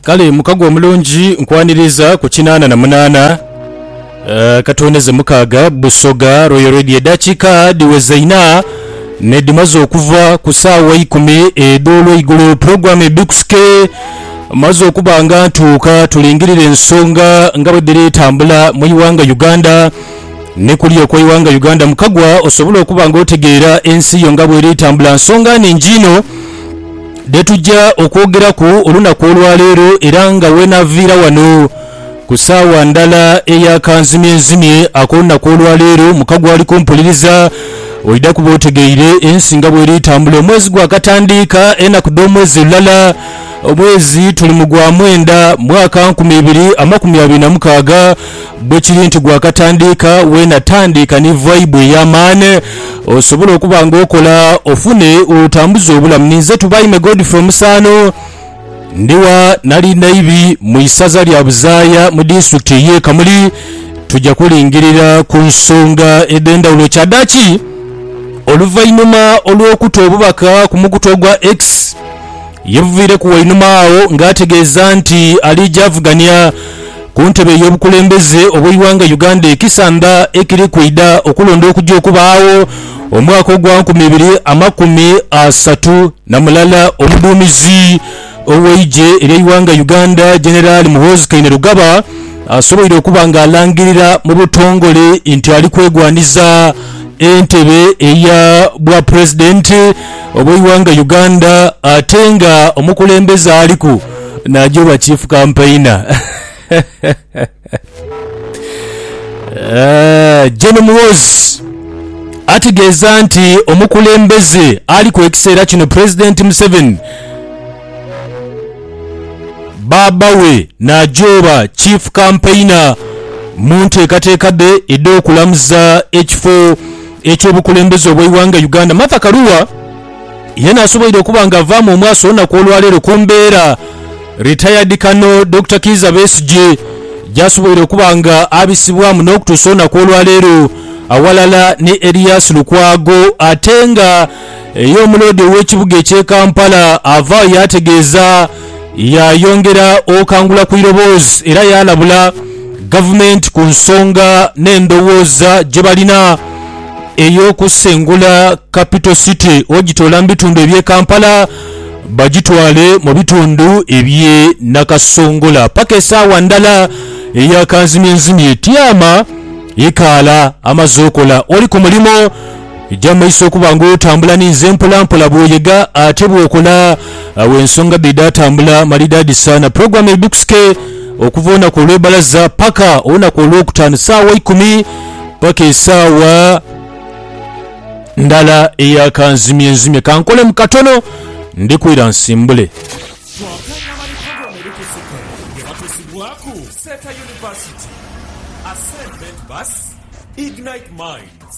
Kale mukago omulungi nkwaniriza ku kinaana na munaana eh, katuwoneze mukaaga Busoga Royal Radio edakika diweza ina nedimaze okuva ku saawa ikumi edolweigulo program ebikusike maze okuba nga ntuuka tulingirire ensonga nga bwediri tambula mu iwanga Uganda ni kuli okwa iwanga Uganda mukagwa osobole okuba nga otegeera ensi yo nga bweri tambula nsonga ningi ino dhe tuja okwogeraku olunaku olwa leero era nga wenaaviira wano ku saawa ndala eya kanzimyenzimye ak'olunaku olwa leero, muka gw'ali kumpuliriza oidha kuba otegeire ensi nga bw'eri tambula. Omwezi gwakatandiika enaku dh'omwezi lulala, omwezi tuli mu gwa mwenda, mwaka nkumi ibiri amakumi abiri na mukaaga. Bwe kiri nti gwakatandiika, weena tandiika ni vaibu ey'amaani osobole okuba nga okola ofune otambuza obulamu. Ninze Tubaime Godfrey Omusaano, ndi wa Nalindaibi mu isaza lya Buzaaya mu disitulikiti ey'e Kamuli. Tuja kulingirira ku nsonga edh'endhawulo kyadaaki oluvainhuma olw'okuta obubaka ku mukutu ogwa X. Yeeviireku wainuma agho ng'ategeeza nti aliija avugania ku ntebe y'obukulembeze obw'eighanga Uganda ekisanda ekiri kwidha okulonda okugya okubaagho omwaka ogwa nkumi ibiri amakumi asatu na mulala. Omuduumizi ow'eigye ery'eighanga Uganda, Generali Muhoozi Kainerugaba asoboire okuba ng'alangirira mu butongole nti ali kwegwanhiza entebe eya Bwapulezidenti. obweighanga Uganda ate nga omukulembeze aliku naja obwa chief kampaina Gen Muhoozi ategeeza nti omukulembeze aliku ekiseera kino pulezidenti Museveni baaba we naja obwa chief kampaina munteekateeka dhe edhokulamuza ekifo eky'obukulembeze obw'eighanga Uganda, Martha Karua yena asoboire okuba nga avaamu omwasi olunaku olwaleero ku mbeera Retired Colonel Dokita Kiiza Besigye gyasoboire okuba nga abisibwamu n'okutuusa olunaku olwaleero awalala ni Erias Lukwago ate nga Eyo omuloodi ow'ekibuga eky'e Kampala avaayo yaategeeza yaayongera okangula ku iroboozi era yaalabula Gavumenti ku nsonga n'endowooza gye balina ey'okusengula Capital City ogitoola mu bitundu eby'e Kampala bagitwale mu bitundu eby'e Nakasongola paka esaawa ndala eya kanzimyenzimye. Tiama ekaala amaze okola oli ku mulimo. Eja mu maiso okuba nga otambula ninze mpola mpola bwoyega ate bwokola awo ensonga dhidhatambula malidaadi saana program eidhuksike okuva olunaku olwebalaza paka olunaku olwokutaanu saawa ikumi paka esaawa ndala eya kanzimye nzimye kankolemu katono ndikwira nsimbule. Kyoka nga bali program edhukusike nga batusibwaku Seeta University, Ascend Ment Bus, Ignite Minds,